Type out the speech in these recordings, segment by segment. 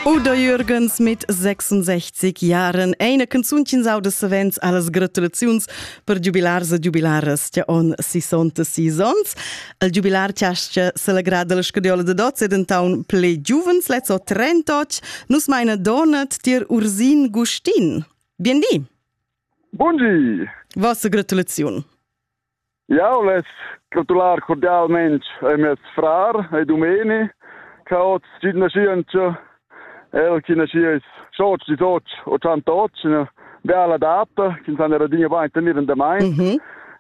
Oder Jürgens mit 66 Jahren eine Canzunchen sau de savens alles gratulaziuns per giubilars e giubilaras che on sissonte seasons. Il giubilar tiasce celegrada la scadiola de dots e dentaun ple giuvens lezo 38 nus meine Donat dir Ursin Gustin. Biendi! Buondì! Vossa gratulaziun! Jau less gratular cordialmain a mes frar e dumeni ch'ha oz tschient naschientscha, el chi naschiess sch'oz disoch o tschantoch, üna bella data ch'insana era digna bain tenir in damain. Mm -hmm.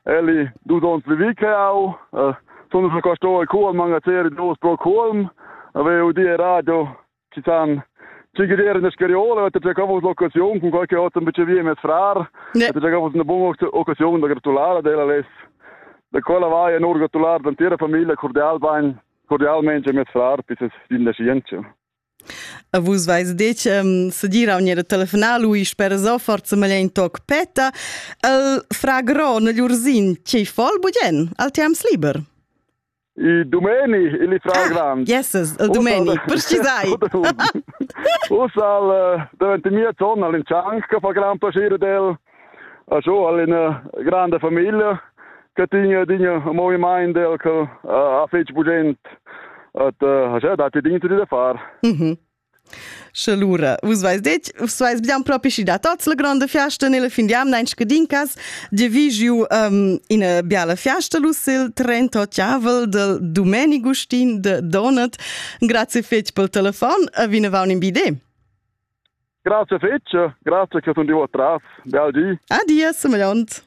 El è dus ons vivi che jau. Uh, sun schon qua sto a Culm, magazin dus pro Culm. Avevo die radio ci san ci geder in scariola da già cavos l'occasione con qualche altro invece via mes frar da già cavos una buona occasione da gratulare della les da quella vai en gratulare l'intera famiglia cordial bain cordialmente mes frar dieses din da scienza A vus vais detg um, segira unir telefonar lui sper zo forza maglia in toc peta el fra gro nel ursin ci fol bugen al tiams liber Il domeni, il fragrant. Yes, il domeni, precisai. Ussa al davent mia tonna all'incianc che fa gran piacere del. A so all'ina grande famiglia che tiene dinja moviment del che ha fetg bugent. At ha già dati dintro da far. Mhm. Sche lura, vus vais detg, vus vais bien propi schi da tots la gronda fiasta nella fin d'jamna in scadincas, di vi giu um, ina biala fiasta lus il 38 avrel del Domenic Gustin de Donat. Grazie fetg pel telefon e vinavon in bi idee. Grazie fetg, grazie che sun di tras. Bel di. Adies, meliont.